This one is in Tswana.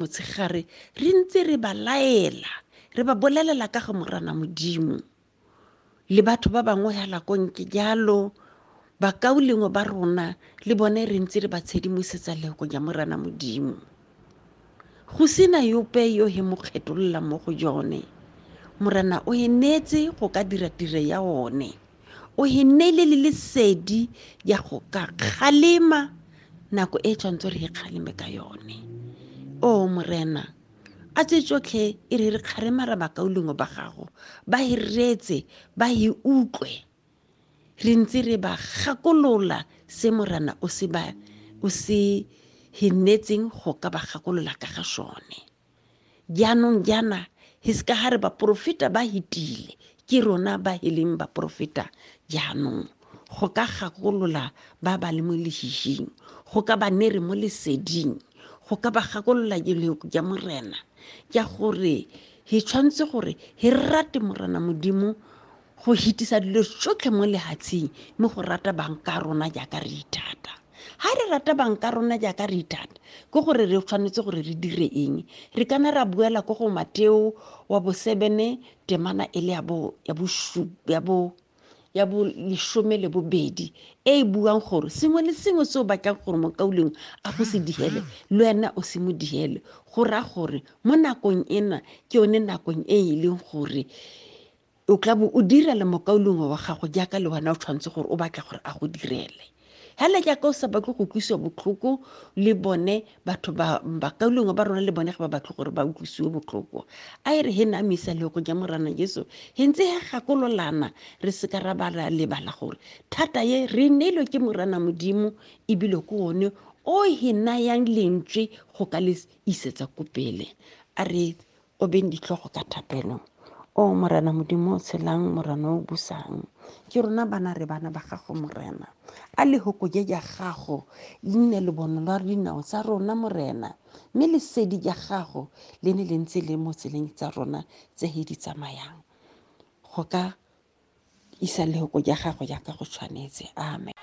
motshegare re ntse re ba laela re ba bolelela ka ga morana modimo le batho ba bangwe ya lakonke jalo bakaulengwe ba rona le bone re ntse re ba tshedimosetsa lego ja morana modimo go sena yope yo he mo kgetolola mo go jone morana o e neetse go ka dira tire ya one o e neile le lesedi ya go ka kgalema nako e tshwanetse re e kgaleme ka yone o morena a tse tsotlhe e re re kgarema ra bakaulengwe ba gago ba e reetse ba e utlwe re ntse re ba gakolola se morana o se ba o se hinetseng go ka ba gakolola ka ga sone jaanong jaana hiska ga re baporofeta ba hitile ke rona ba e leng baporofeta jaanong go ka gakolola ba ba le mo lehihing go ka ba ne re mo leseding go ka ba gakolola jeleko ja morena ja gore he tshwanetse gore he rate morena modimo go hitisa dilo tsotlhe mo lehatsheng mme go rata banka rona jaaka re ithata ga re rata banka rona jaaka re ithata ke gore re tshwanetse gore re dire eng re kana ra buela ko go mateo wa bosebene temana e le ya bo ya bo ya bo ya bo lesome le bobedi e e buang gore sengwe le sengwe se o batlang gore mokauleng a go se digele le wena o se mo digele go raya gore mo nakong ena ke yone nakong e e leng gore o tla bo o direla mokaulengwe wa gago jaaka le wena o tshwanetse gore o batla gore a go direle hela jaaka o sa batle go utlwisiwa botlhoko le bone batho bakaulengwe ba rona le bone ga ba batle gore ba utlwisiwe botlhoko a e re he na misa le go ja morana jesu he ntse he gakololana re seka ra ba ra lebala gore thata ye re neilwe ke morana modimo ebile ke one o he nayang lentswe go ka le isetsa ko pele a re o beng ditlhogo ka thapelo o morena modimo o tshelang morena o busang ke rona bana re bana ba gago morena a lehoko je ja gago le nne le bono lwa dinao tsa rona morena mme lesedi ja gago le ne le ntse le mo tseleng tsa rona tse he di tsamayang go ka isa lehoko ja gago jaaka go tshwanetse amen